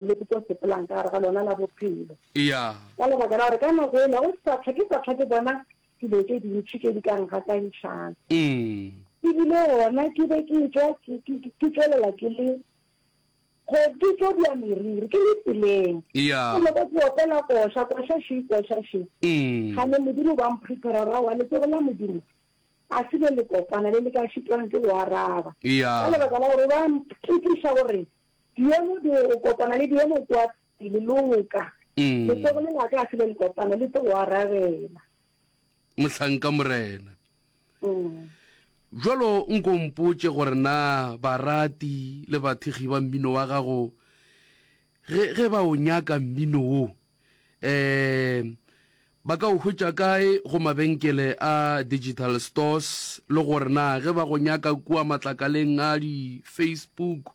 Le ke tlo sepelang ka gare ga lona la bophelo. Eya. Ka lebaka la gore ka nako ela go sa tlhoke sa tlhoke bona dilo tše dintši tše di ka ngakantšhang. E bile gona ke be ke etšwa ke tšwelela ke le go ke tlo bja meriri ke le tseleng. Eya. Ke leka ke opela koša koša še koša še. Ga ne Modimo ba mprepara ra wa letsogo la Modimo a se be le kopana le le ka šitwang ke go araba. Eya. Ka lebaka la gore ba mphitiša gore Diemo di o kopana le diemo kua pele lo nka. Letsogo le la ka a se le le kopana le tlo go arabela. Mohlanka Morena. Bjalo nko o mpotše gore na barati le bathekgi ba mmino wa gago ge ge ba o nyaka mmino wo um ba ka o hwetša kae go mabenkele a digital stores le gore na ge ba go nyaka kua matlakaleng a di-facebook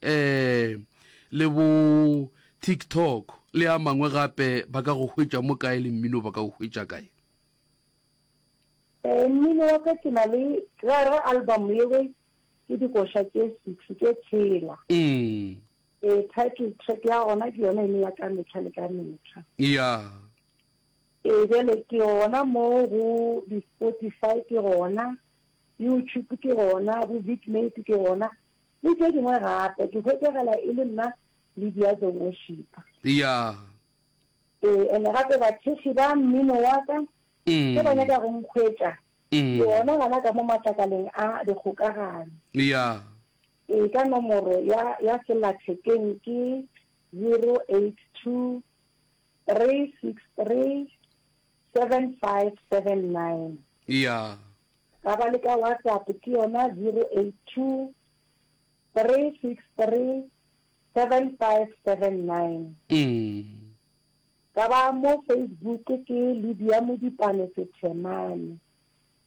um le bo tiktok le a mangwe gape ba ka go hwetša mo kae le mmino ba ka o hwetša kae um mmino wa ka ke na le gare album yewe ke dikoša tše six tše tshela mm. Ee, title track ya gona ke yona e ne ya ka metlha le ka metlha. Yeah. Ee, bjale ke gona mo go di-Spotify ke gona, YouTube ke gona, bo Vidmate ke gona, le tše dingwe gape. Ke hwetšagala e le nna Lydia the Worshipper. Yeah. Ee, ene gape bathekgi ba mmino wa ka Mm. ge ba nyaka go nkhwetša, Mm. ke gona gana ka mo matlakaleng a dikgokagano. Yeah. Ee, ka nomoro ya, ya selathekeng ke zero eight two, three six three, seven five seven nine. Eya. Ka ba le ka WhatsApp ke yona zero eight two, three six three, seven five seven nine. Mm. Ka ba mo Facebook ke Lydia Modipane Sethemane.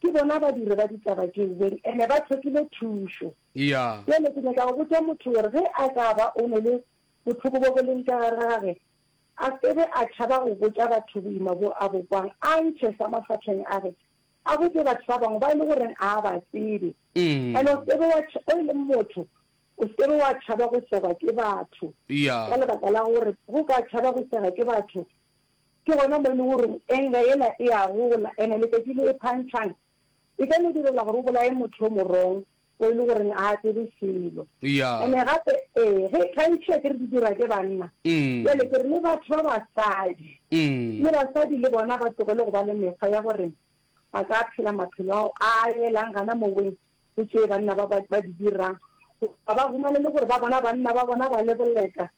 Ke bona badiri ba ditaba tšeo beng ene ba thokile thušo. Eya. Bjale ke nyaka go botša motho gore ge a ka ba o ne le bohloko bo bo leng ka gare ga gage, a se be a tšhaba go botša batho boima bo a bo kwang, a ntšhe sa mafahleng a ge, a botše batho ba bangwe ba e le goreng a a ba tsebe. Ene o se be wa, o e leng motho, o se be wa tšhaba go segwa ke batho. Eya. Ka lebaka la gore ge o ka tšhaba go sega ke batho, Ke gona mo e lego gore enga yela e a gola, ene letšatši le e phantšhang e ka no direla gore o bolaye motho yo morong o e le gore ga a tsebe selo. Ene gape, ee, ge e phantšhiwa ke re di dirwa ke banna, bjale ke re le batho ba basadi, le basadi le bona ba tlogele go ba le mekgwa ya gore ba ka phela maphelo ao a yelang gana moweng go tše banna ba di dirang, goba ba humane le gore ba bona banna ba bona ba le boleta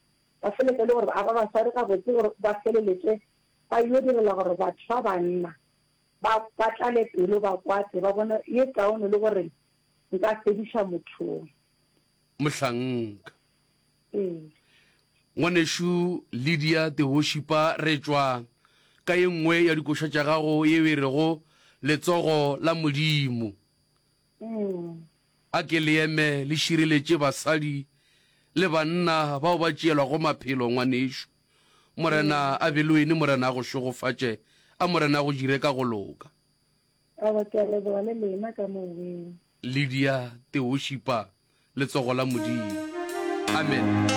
Ba feletse e le gore ba aba basadi gabotse gore ba feleletse ba yyo direla gore batho ba banna ba ba tlale pelo, ba kwate, ba bone ye kaone le gore nka fediša mothong. Mohlanka. Ee. Ngwanešu Lydia Teoshipa re tšwa ka ye nngwe ya dikoša tša gago yeo e rego Letsogo la Modimo. A ke le eme le šireletše basadi le banna bao ba tšeelwago maphelo, ngwanešu. Morena a be le wene, Morena a go šegofatše, a Morena a go dire ka go loka. Aowa, ke a leboga, le lena ka Moweng. Lydia, Teoshipa, Letsogo la Modimo. Amen.